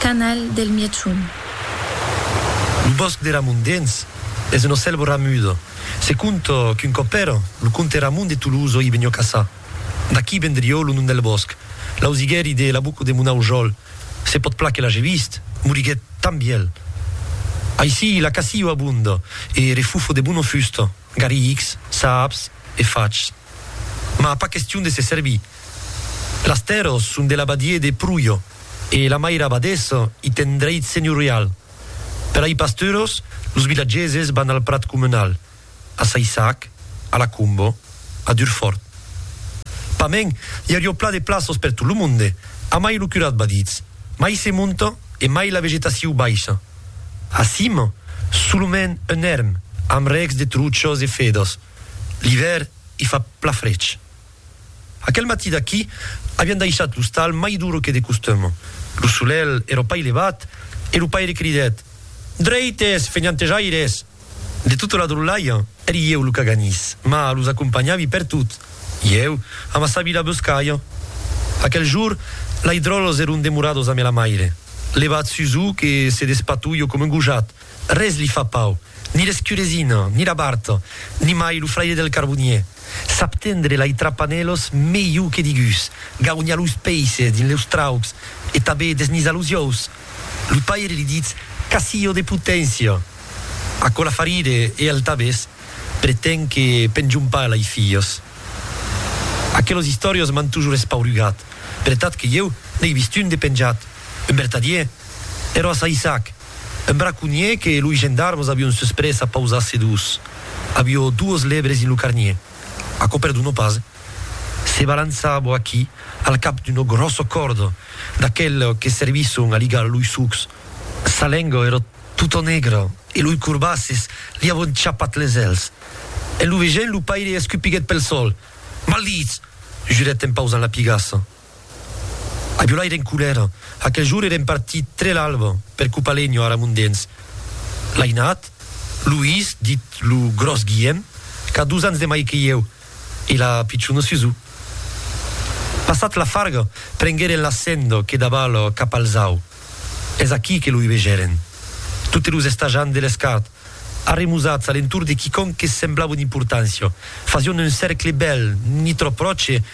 Canal del Mièchon. Lo bòsc de Ramon Dens es una selva ramuda. Se conta qu'un còp èra lo comte Ramon de Tolosa i venió caçar. D'aquí vendrió lo nom del bòsc. L'ausiguèri de la boca de mon aujòl, se pòt plan que l'age vist, moriguèt tan vièlh. Aicí la caçio abonda e refufo de bona fusta, garrics, saps e fachs. Mas pas question de se servir. Las tèrras son de l'abadier de Pruja e la maira abadessa i ten dreit senhorial. Per ai pasturas, los vilatgeses van al prat comunal, a Saissac, a la Comba, a Durfort. Pas mens, i auriá plan de plaças per tot lo monde, a mai lo curat va ditz, mai se monta e mai la vegetacion baisha. A cima, solament un èrm amb rècs de truchas e fedas. L'ivèrn i fa pla frech. Aquel matí d'aquí avián daishat l'ostal mai duro que de costum. Lo solelh èra pas levat e lo paire cridèt, Drèites, fenhantejaires! De tota la drolhalha, èri ieu lo caganís, mas los acompanhavi pertot. Ieu, amassavi la boscalha. Aquel jour, lei dròlhs èron demorados amé la maire. Levat sus o que se despatolho coma un gojat, Res li fa pau, ni l'escuresina, ni la barta, ni mai lo fraire del carbonier. Sap tendre lai trapanèlos melhor que digús, gaunha los peisses dins leus traucs e tabé desnizar los iòus. Lo paire li ditz casillo de poténcia. Aquò la fa rire e el tabés pretén que penjon pas lai filhos. Aquelos istòrios m'an tojor espaurugat, per tat que ieu n'ai vist un de penjat, un vertadier, ero a Saissac. Un braconhier que loi gendarmes avion susprés a pausar sedós. Avió duos lèbres dins lo carnier. Aquò perdonó pas. Se balançar bo aquí, al cap d'una gròssa còrda, d'aqueles que servisson a ligar loi sucs. Sa lenga èra tota negra e loi corbasses li avion chapat les èls. En lo vegent, lo paire escupiguèt pel sol. Maldits! jurèt en pausant la pigassa. Aviolà èra en colèra. Aquel jorn èrem partits tre l'alba per Copalenho, ara Mondens. L'ainat, Luís, dit lo gròs Guièm, qu'a dos ans de mai que ieu, e la pichona Susù. Passat la farga, prenguèren la senda que daval cap al zau. Es aquí que lo hubegèren. Totes los estajants de l'escart, arremusats a l'entorn de quicòm que semblava d'importància, fasián un cèrcle bèl, ni tròp pròche,